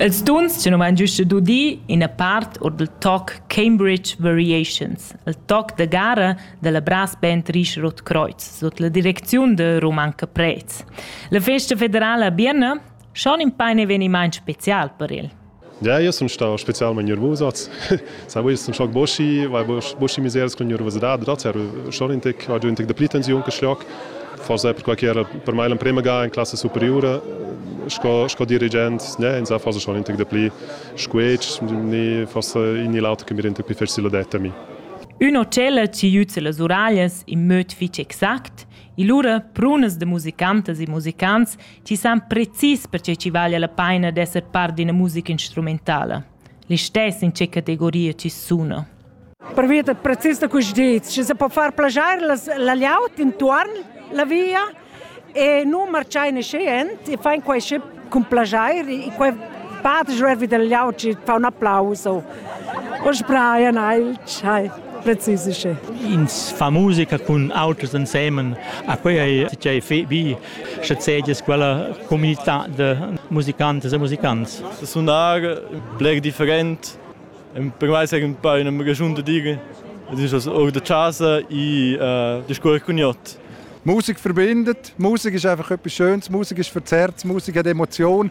Els tuns tenuan giusta d'udir ina part or dal toc Cambridge Variations, il toc da gara dalla Brass Band Richard Kreuz sut la direcziun da Roman Caprez. La festa federala a Bienna schon in pain eveniment special per el. Ja, io sun stà spezialmaing niervus hoz. Sai, io sun schoc boschi, vai boschi miseras cun niervusidad, dad eir schon ün tec, ho giü ün tec dapli tensiun che schloc. Forsa perquai ch'era per mai l'emprema ga in classa superiura sco, sco dirigent, ne, insà forsa schon ün tec dapli squetsch, ne, forsa in ni l'auter che mi renda più facil adet a mi. Ün hotel ci jüz las uraglias in möd fich exact, illura prunas de musicantas e musicants Ti san precis pertgei chi vaglia la paina d'esser part d'ina musica instrumentala. Listess in che categoria ti suna. Pervia da precis da questi dits, ci se può far plagiare la, la layout intorn la via e non marciare nascendo e fai questi con plagiare e quei parte jervi del layout ci fa un applauso. Oggi Brian Eilch, hi. precisisce. Ins fa musica con auters insieme, a quei ei tgei bi Sche sedias quella communità da musicantas e musicants? Sunar bler different. Per mai sei un po' una ragion da dire. Es ist also auch der Chasa in äh, der Schule Cognot. Musik verbindet. Musik ist einfach etwas Schönes. Musik ist verzerrt. Musik hat Emotion.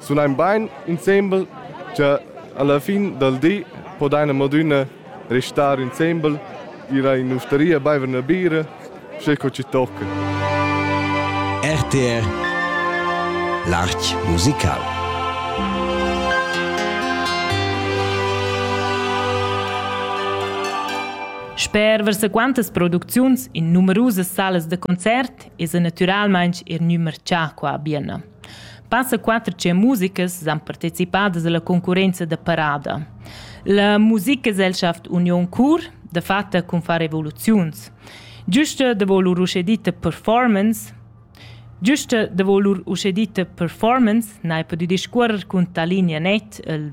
sulain bain insembel cha alla fin dal di podaina madüna restar insembel ira in ustaria baiver üna bira sche co ci tocca. RTR L'Arch musical Sper versaquantas producziuns in numerusas salas da concert es natüralmaing er gnü marchà qua a Bienna. Passa quatter tschient musicas san participadas alla concurrenza da parada. La Musikgesellschaft Union Chur dafatta cun far revoluziuns. Giusta da lur uschedita performance Giusta da lur uschedita performance n'hai pudü discuorrer cun Talinea Net, il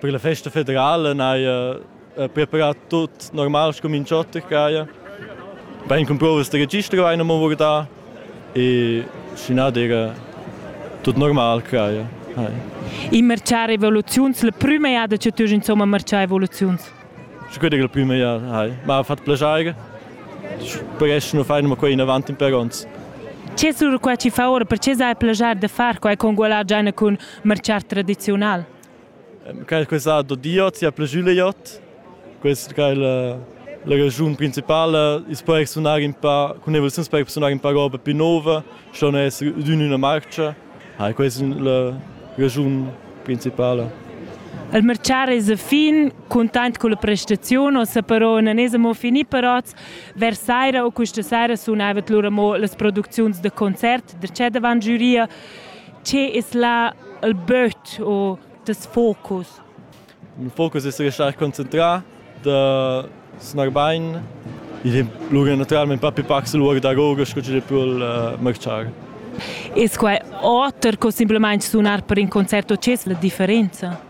Per la festa federala n'haja preparà tut normal scumincio oter ch'haja. Bain cun provas da registro haina mo vurdà e sch'i n'ha d'era tut normal ch'haja. Hai. I marchà revoluziuns, la prüma jada che tü insomma marchà evoluziuns? Sche quella è la prima jada, hai. Ma ha fatto piacere. Presto non fanno qua in avanti per ons. Che sur qua ci fa ora, perché sai piacere da far qua con gualar già con marciar tradizional? quel che sa do Diot sia plüschüleiot quest che la la raschun principala is po exsunar in pa cun evoluziuns per exsunar in pa roba più nova schon es d'ün üna marcha ha questa la raschun principala Il mercar es a fin cuntent culla prestaziun o sa però non es amo fini però vers saira o questa saira sunava lura mo las producziuns da concert da c'è davan giuria Tge es là il böt u tes focus? Il focus es restar concentrà, da snar bain. Il è lura naturalmain pa pli pacs lura da goga sco chi pul uh, marchar. Es quai oter co simplamaing sunar per in concert o c'es la differenza?